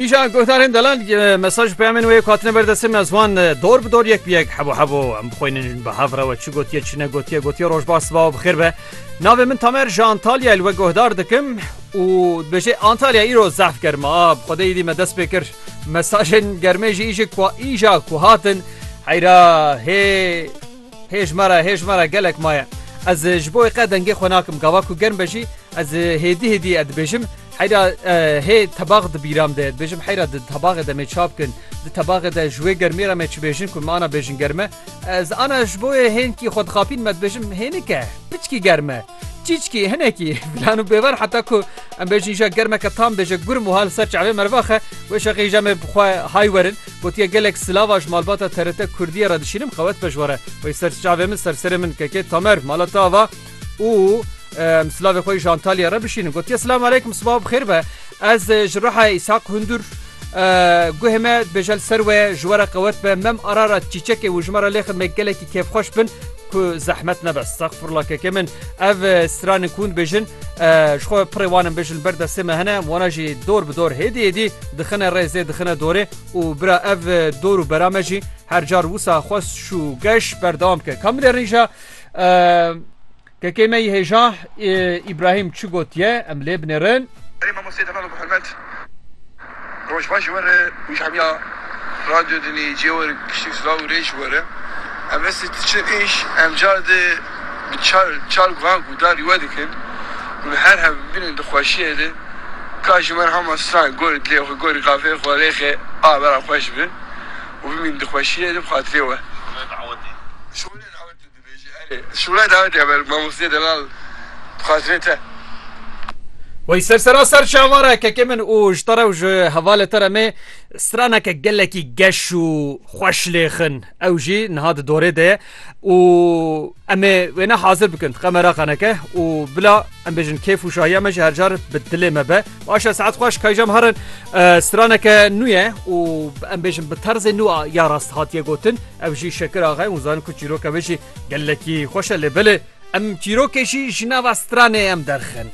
Îşa guhdarên delal mesaj û peyamên wê yek hatine ber destê min ez wan dor bi dor yek bi yek hebo hebo em bixwînin bi hev re we çi gotiye çi ne gotiye gotiye roj baş siba û bixêr be navê min tamer ji Antalya li we guhdar dikim û dibêjê Antalya îro zehf germ a bi xwedê îdî me dest pê kir mesajên germê jî îjik ku îja ku hatin heyra hê Hê ji me re, hê ji me re gelek maye. Ez ji bo wê qet dengê xwe nakim, gava ku germ be jî ez hêdî hêdî e dibêjim. Heyra hê tebax di bîram de ye. Dibêjim heyra di tebaxê de mê ça bikin. Di tebaxê de ji wê germiyê re me çi bêjin ku min ana bêjin germ e. Ez ana ji bo wê hênkî xwe dixapîn me dibêjim hênik e, piçkî germ e. Çîçkî hinekî filan û bêvar heta ku em bêjin îja germeke tam bêje gurm û ha li ser çavê mervaxe wê şeqê îja me bixwe hay werin gotiye gelek silava ji malbata TRT Kurdiyê re dişînim qewet pejware wey ser çavê min ser serê min kekê tamer mala te ava û em silavê xwe ji Antalya re bişînin gotiye silam aleykum sibav bixêr be ez ji reha îshaq hundur guhê me bêje li ser we ji were qewet be mem arara çîçekê û ji me re lê xidmê gelekî kêfxweş bin Ku zehmet nebe stexfurla keke min ev stranên kûn bêjin ji xwe pirê wanin bêjin li ber destê me hene wana jî dor bi dor hêdî hêdî dixine rêzê dixine dorê û bira ev dor û bera me jî her car wisa xwe şû geş berdewam ke kam lê rîja kekê me yî hêja îbrahîm çi gotiye em lê binêrin. Ey mamostê demal û bi hurmet. Rojbaş ji we re û ji hemiya Radyo Dinleyiciye we re piştî silav û rê ji we re. Em restê tu çi êş em car de bi çar çar guhan ku darî we dikin û li her hev bin di xweşiyê de ka ji mer hama stran gorî dilê xwe gorî qafeyê xwe rêxe a bera xweş bi û bimîn di xweşiyê de bi xatirê we. Ji we re dawet e. Dibêjî erê. Sûre dawî diya ber mamosteyê delal bi xatirê te. Wey ser sera ser çavare kekê min û ji te re û ji hevalê te re me straneke gelekî geş û xweş lê xin. Ew jî niha di dorê de ye û em ê wêne hazir bikin diqe me re qeneke û bila em bêjin kêf û şahiya me ji her car bi dilê me be. Baş e saet xweş kayjam herin straneke nû ye û em bêjin bi terzê nû a ya rast hatiye gotin. Ev jî Şekir Axa ye û zanîn ku çîroka wê jî gelekî xweş e lê belê em çîrokê jî ji nava stranê em derxin.